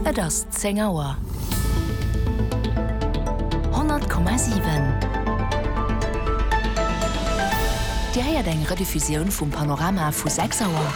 Et ass 10 Auer. 100,7 Dir héiert eng Rediffusioun vum Panorama vu 6 Auer.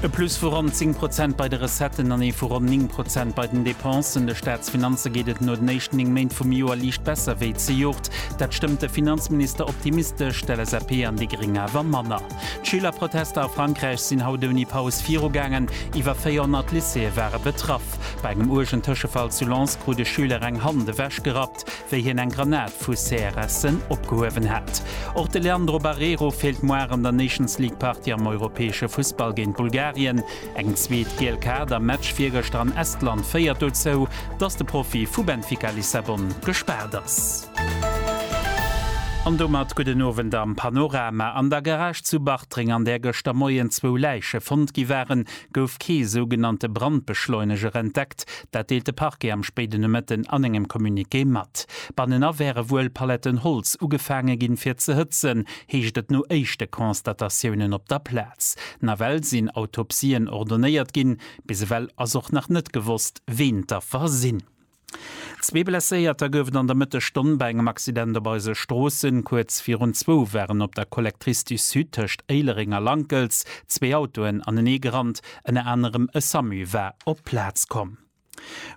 E Plus vu ronn 10 Prozent bei de Recetten an ee vu ronn 9 Prozent bei den Depensen. De Staatsfinanze geet et no den éischten 9 Méint vum Joer liicht besser wéi zejoert. Dat stëmmt de Finanzminister optimistesch, d'LSAP an déi Gréng awer manner. D'Schülerprotester a Frankräich sinn haut ouni Paus virugaangen. Iwwer 400 Lycéeë ware betraff. Bei engem uergen Tëschefall zu Lens krut e Schüler eng Hand ewechgerappt, wéi hien eng Granat vu CRS'en opgehuewen hat. Och de Leandro Barreiro feelt muar an der Nations League-Partie am europäesche Fussball géint Bulgarien. Eng zweet giel Kaart am Match virgëschter an Estland féiert dozou, dass de Profi vu Benfica Lissabon gespaart ass. An domat gudden Owend am Panorama. An der Garage zu Bartreng, an där gëschter Moien zwou Läiche fonnt gi waren, gouf kee sougenannte Brandbeschleuneger entdeckt. Dat deelt de Parquet am spéiden Nomëtten an engem Communiqué mat. Bannenan wäre wuel Paletten Holz ugefaange ginn, fir ze hëtzen. heescht et no éischte Constatatiounen op der Plaz. Nawell sinn Autopsien ordonéiert ginn. Bis ewell ass och nach net gewosst, ween d'Affer sinn. Zwee Blesséierter gouf et an der Mëttesstonn bei engem Accident op eise Stroossen. Kuerz virun zwou waren op der Collectrice du Sud tëscht Éilereng a Lankels zwee Autoen anenee gerannt. Ënner anerem e Samu war op d'Plaz komm.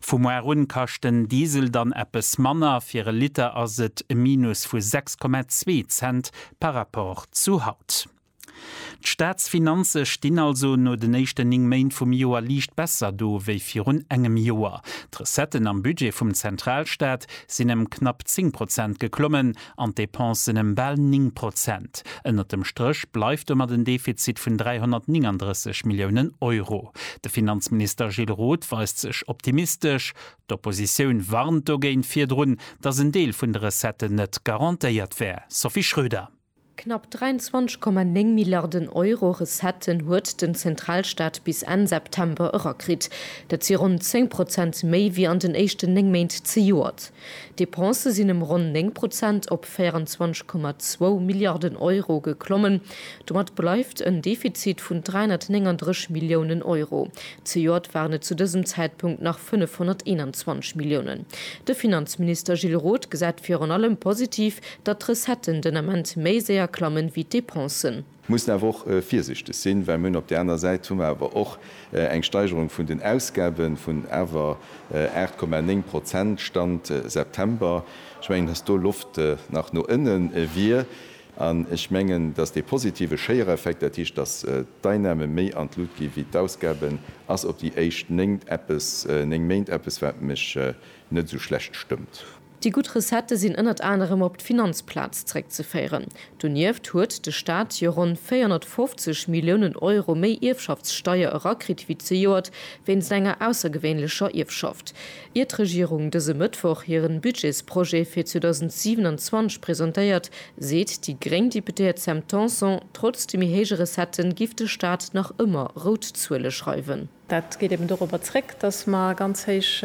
Vu muar un kascht den Diesel dann eppes manner, fir e Liter ass et e Minus vu 6,2 Cent par rapport zu haut. D'Staatsfinanze stinn also no den éischten 9 Méint vum Joer liicht besser do wéi virun engem Joer. D'Recetten am Budget vum Zentralstaat sinn ëm knapp 10 Prozent geklommen, an d'Depensen ëm bal 9 Prozent. Ënnert dem Stréch bleift domat en Defizit vun 339 Milliounen Euro. De Finanzminister Gilles Roth weist sech optimistesch. D'Oppositioun warnt dogéint virdrun, datt en Deel vun de Recetten net garantéiert wär. Sophie Schröder. Knapp 23,9 Milliarden Euro Recetten huet den Zentralstaat bis Enn September erakritt. Dat si ronn 10 Prozent méi wéi an den éischten 9 Méint zejoert. D'Depensë sinn ëm ronn 9 Prozent op 24,2 Milliarden Euro geklommen. Domat bleift en Defizit vun 339 Milliounen Euro. Zejoert waren et zu dësem Zäitpunkt nach 521 Milliounen. De Finanzminister Gilles Roth gesäit virun allem positiv, datt d'Recetten den Ament méi séier klammen, wéi d'Depensen. Mir mussen awer och virsichteg sinn, well mir hunn op där anerer Säit hu mer awer och eng Steigerung vun den Ausgaben vun awer 8,9 Prozent, Stand September. Ech mengen, dass do Loft nach no ënnen wier. An ech mengen, dass dee positive Schéiereffekt, dat heescht, dass d'Einnahmen méi an d'Lut gi wéi d'Ausgaben, ass op déi éischt néng Eppes, néng Méint eppes, wat mech net esou schlecht stëmmt. Déi gutt Recettë sinn ënnert anerem op d'Finanzplaz zréckzeféieren. Donieft huet de Staat jo ronn 450 Milliounen Euro méi Ierfschaftssteier erakritt wéi zejoert wéinst enger aussergewéinlecher Ierfschaft. Ier d'Regierung dëse Mëttwoch hiren Budgetsprojet fir 2027 presentéiert, seet déi gréng Deputéiert Sam Tanson, trotz de méi héije Recettë giff de Staat nach ëmmer rout Zuele schreiwen. Dat geet eben dorobber zréck, datt mer ganz héich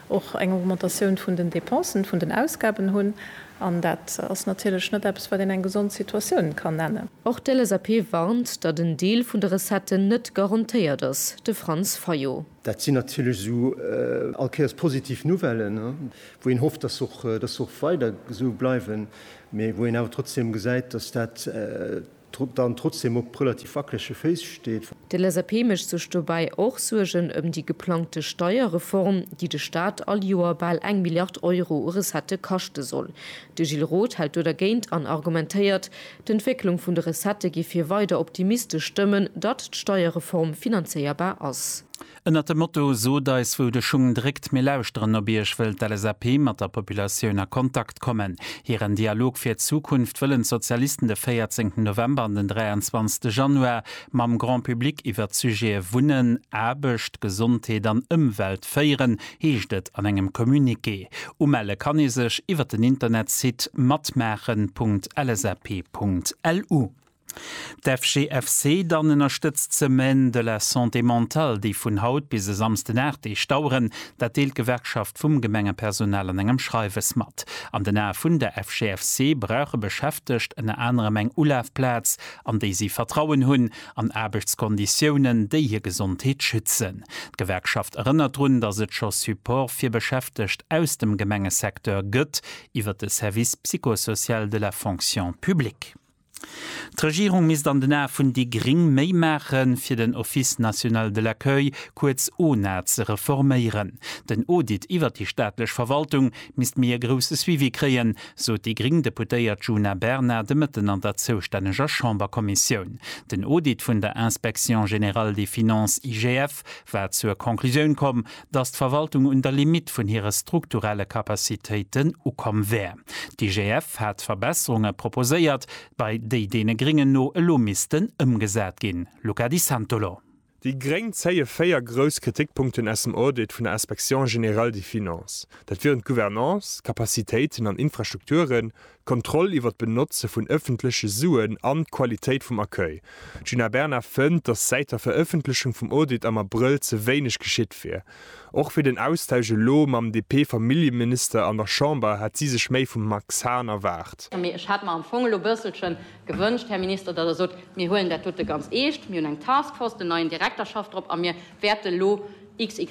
och eng Augmentatioun vun den Dépensen, vun den Ausgaben hunn, an dat ass natierlech net eppes, wat een eng gesond Situatioun kann nennen. Och d'LSAP warnt, datt en Deel vun de Recetten net garantéiert ass, de Franz Fayot. Dat sinn natierlech esou all Kéiers positiv Nouvellen, wou een hofft, datt se och weider esou bleiwen, mee wou een awer trotzdem gesäit, datt dat, dann trotzdem op relativ wackelege Féiss steet. De LSAP mécht sech dobäi och Suergen ëm déi geplangte Steierreform, déi de Staat all Joer bal eng Milliard Euro u Recettë kaschte soll. De Gilles Roth hält do dergéint an argumentéiert, d'Entwécklung vun de Recettë géif hie weider optimistesch stëmmen, datt d'Steierreform finanzéierbar ass. Ënnert dem Motto Sot eis wou de Schung dréckt, mir lauschteren op iech wëll d'LSAP mat der Populatioun a Kontakt kommen. Hiren Dialog fir d'Zukunft wëllen d'Sozialisten de 14 November an den 23 Januar mam Grand Public iwwert d'Sujete Wunnen, Aarbecht, Gesondheet an Ëmwelt féieren, heescht et an engem Communiqué. Umelle kann ee sech iwwert den Internetsite matmaachen. LSAP.lu. D'FGFC dann ënnerstëtzt d'Semaine de la Santé Mentale, déi vun haut bis e Samsden 8 Deeg daueren. Dat deelt d'Gewerkschaft vum Gemengepersonal an engem Schreiwes mat. An den Ae vun der FGFC brauche Beschäftegt ënner anerem eng Ulafplaz, an déi si Vertrauen hunn, an Aarbechtskonditiounen, déi hir Gesondheet schützen. D'Gewerkschaft erënnert drun, datt et scho Support fir Beschäftegt aus dem Gemengesecteur gëtt iwwer de Service psychosocial de la Fonction publique. D'Regierung misst an den Ae vun déi Gring méi maache fir den Office national de l'accueil, kuerz ONA, ze reforméieren. Den Audit iwwert déi staatlech Verwaltung misst méi e grousse Suivi kréien, sot déi gring Deputéiert Djuna Bernard de Mëtten an der zoustänneger Chamberkommissioun. Den Audit vun der Inspection générale des finances, IGF, Chef war zur Conclusioun komm, datt d'Verwaltung un der Limitt vun hire strukturelle Capacitéiten ukomm wär. D'IGF hat Verbesserunge proposéiert, bei déi deene Gréngen no elo missten ëmgesat ginn. Luca Di Santolo. Déi Gréng zéie véier grouss Kritikpunkten aus dem Audit vun der Inspection générale des finances. Dat wieren d'Gouvernance, d'Capacitéiten an Infrastrukturen, d'Kontroll iwwer d'Benotze vun ëffentleche Suen an d'Qualitéit vum Accueil. D'Djuna Bernard fënnt, datt säit der Verëffentlechung vum Audit am Abrëll ze wéineg geschitt wier. Och fir den Austausch elo mam DP-Familljeminister an der Chamber hätt si sech méi vum Max Hahn erwaart. Mee ech hätt mer am Fong elo bësselche gewënscht, Här Minister, datt Der sot, Mir huelen dat dote ganz eescht, mir hunn eng Task Force, den neien Direkter schafft drop a mir wäerte elo, XY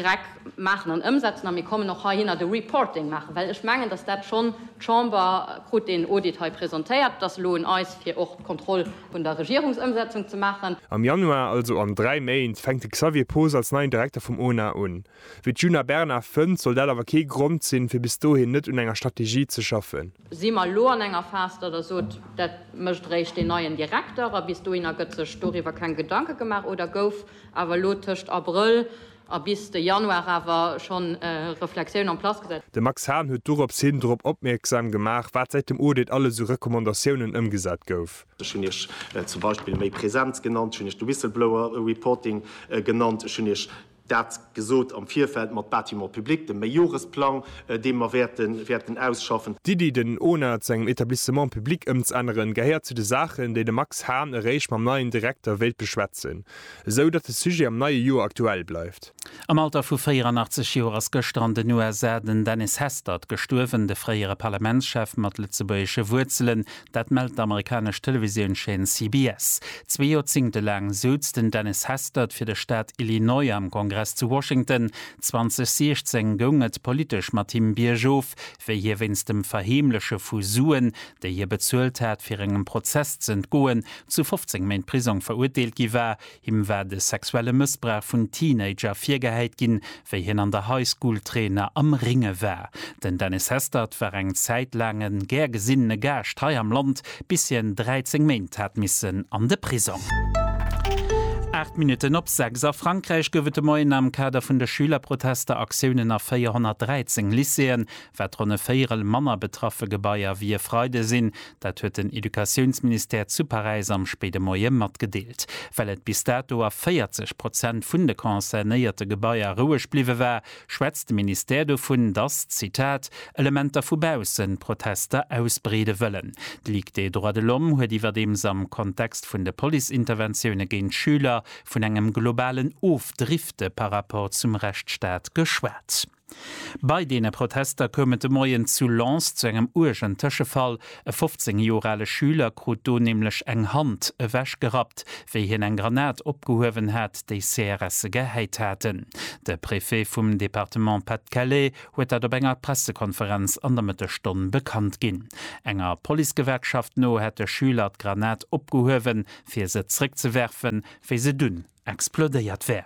maachen an ëmsetzen a mir kommen och heihinner de Reporting maachen, well ech mengen, dass dat schonn, d'Chamber krut deen Audit hei presentéiert, et ass elo un eis, fir och d'Kontroll vun der Regierungsëmsetzung ze maachen. Am Januar, also an dräi Méint, fänkt de Xavier Poos als neien Direkter vum ONA un. Wéi d'Djuna Bernard fënnt, soll dat awer kee Grond sinn, fir bis dohin net un enger Strategie ze schaffen. Si mer elo an enger Phas, datt Der sot, dat mécht eréischt deen neien Direkter a bis dohinner gëtt sech doriwwer keng Gedanke gemaach, oder gouf, awer elo tëscht Abrëll a bis de Januar awer schonn Reflexioun en place gesat. De Max Hahn huet dorops hin drop opmierksam gemaach, wat säit dem Audit alles u Recommandatiounen ëmgesat gouf. Ech hunn Iech zum Beispill méi Präsenz genannt, ech hunn Iech de Whistleblower Reporting genannt, ech hunn Iech dat. gesot am Virfeld mat Bâtiments publics, dem Meijoresplang, dee mer wäerten ausschaffen. D'Iddi, den ona zu engem Etablissement public ëmzänneren, gehéiert zu de Saachen, déi de Max Hahn eréischt mam neien Direkter wéilt beschwätzen, esou datt de Sujet am neie Joer aktuell bleift. Am Alter vu 84 Joer ass gëschter an den USA den Dennis Hastert gestuerwen, de fréiere Parlamentschef mat lëtzebuergesche Wuerzelen. Dat mellt d'amerikanesch Televisiounscheen CBS. Zwee Joerzéngte laang souz den Dennis Hastert fir de Staat Illinois am Kongress zu Washington. 2016 goung et politesch mat him biergof, wéi hie wéinst dem Verheemleche vu Suen, déi hie bezuelt hat, fir engem Prozess z'entgoen, zu 15 Méint Prisong verurteelt gi war. Him war de sexuelle Mëssbrauch vun Teenager virgehäit ginn, wéi hien an der High School Trainer am Ringe war. Den Dennis Hestert war eng Zäit laang e gär gesinnene Gaascht hei am Land, bis hien 13 Méint hat missen an de Prisong. Aacht Minutten op sechs. A Frankräich gouf et de Moien am Kader vun de Schülerprotester Aktiounen a 413 Lycéeën. Wat ronn e Véierel manner betraffe Gebaier wéi e Freide sinn Dat huet den Educatiounsministère zu Paräis am spéide Moie matgedeelt. Well et bis dato a 40 Prozent vun de concernéierte Gebaier roueg bliwwe war, schwätzt de Ministère dovun, datt, Zitat, Elementer vu baussen d'Protester ausbreede wëllen. D'Ligue des droits de l'homme huet iwwerdeems am Kontext vun de Police-Interventioune géint Schüler vun engem globalen Ofdrifte par rapport zum Rechtsstaat geschwat. Bei deene Protester koum et de Moien zu Lens zu engem uergen Tëschefall. E 15 Joer ale Schüler krut do nämlech eng Hand ewech gerappt, wéi hien eng Granat opgehuewen hat, déi CRSe gehäit haten. De Préfet vum Departement Pas-de-Calais huet dat op enger Pressekonferenz an der Mëttesstonn bekannt ginn. Enger Policegewerkschaft no hätt de Schüler d'Granat opgehuewen, fir se zréckzewerfen, wéi se dunn explodéiert wär.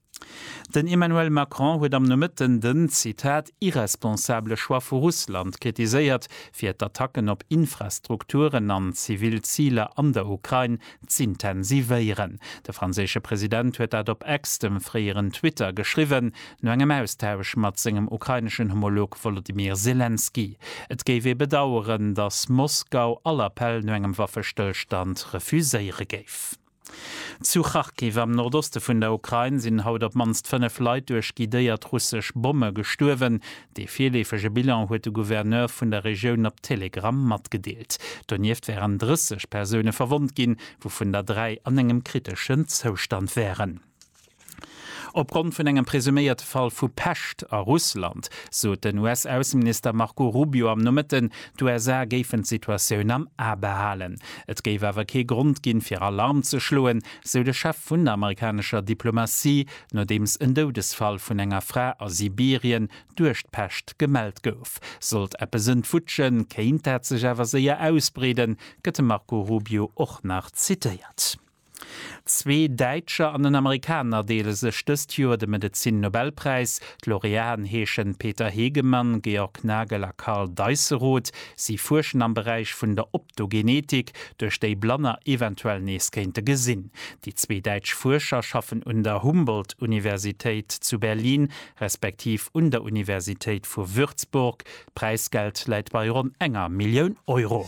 Den Emmanuel Macron huet am Nomëtten den, Zitat, irresponsabele Choix vu Russland kritiséiert, fir d'Attacken op Infrastrukturen an zivil Ziler an der Ukrain z'intensivéieren. De franséische President huet dat op X, dem fréieren Twitter, geschriwwen, no engem Austausch mat sengem ukraineschen Homolog Wolodymyr Selenskyj. Et géif ee bedaueren, datt Moskau all Appell no engem Waffestëllstand refuséiere géif. Zu Kharkiv am Nordoste vun der Ukrain sinn haut op d'mannst 5 Leit duerch guidéiert russesch Bomme gestuerwen. Dee virleefege Bilan huet de Gouverneur vun der Regioun op Telegram matgedeelt. Donieft wären 30 Persoune verwonnt ginn, wouvun der dräi an engem kriteschen Zoustand wären. Opgrond vun engem presuméierte Fall vu Pescht a Russland sot den US-Ausseminister Marco Rubio am Nomëtten, d'USA géifen d'Situatioun am A behalen. Et géif awer kee Grond ginn, fir Alarm ze schloen, sou de Chef vun der amerikanescher Diplomatie, nodeems en Doudesfall vun enger Fra a Sibirien duerch d'Pescht gemellt gouf. Sollt eppes entwutschen, kéint dat sech awer séier ausbreeden, gëtt de Marco Rubio och nach zitéiert. Zwee Däitscher an en Amerikaner deele sech dëst Joer de Medezin-Nobelpräis. D'Laureaten heeschen Peter Hegemann, Georg Nagel a Karl Deisseroth. Si fuerschen am Beräich vun der Optogenetik, duerch déi Blanner eventuell nees kéinte gesinn. Déi zwee däitsch Fuerscher schaffen un der Humboldt-Universitéit zu Berlin respektiv un der Universitéit vu Würzburg. D'Präisgeld läit bei ronn enger Millioun Euro.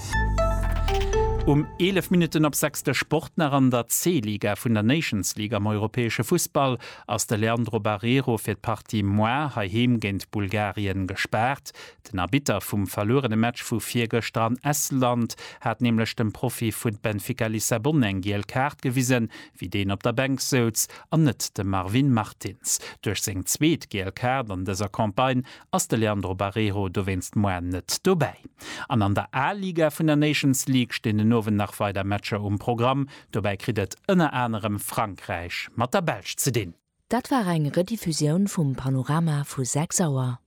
Um 11 Minutten op 6 de Sport nach, An der C-Liga vun der Nations League am europäesche Fussball ass de Leandro Barreiro fir d'Partie moar heiheem géint Bulgarien gespaart. Den Arbitter vum verluerene Match vu virgëschter an Estland hat nämlech dem Profi vu Benfica Lissabon eng giel Kaart gewisen, wéi deen op der Bänk souz, an net dem Marvin Martins. Duerch seng zweet giel Kaart an dëser Campagne ass de Leandro Barreiro dowéinst moar net dobäi. An an der A-Liga vun der Nations League stinn den Owend nach weider Matcher um Programm. Dobäi kritt et ënner anerem Frankräich mat der Belsch ze dinn. Dat war eng Rediffusioun vum Panorama vu 6 Auer.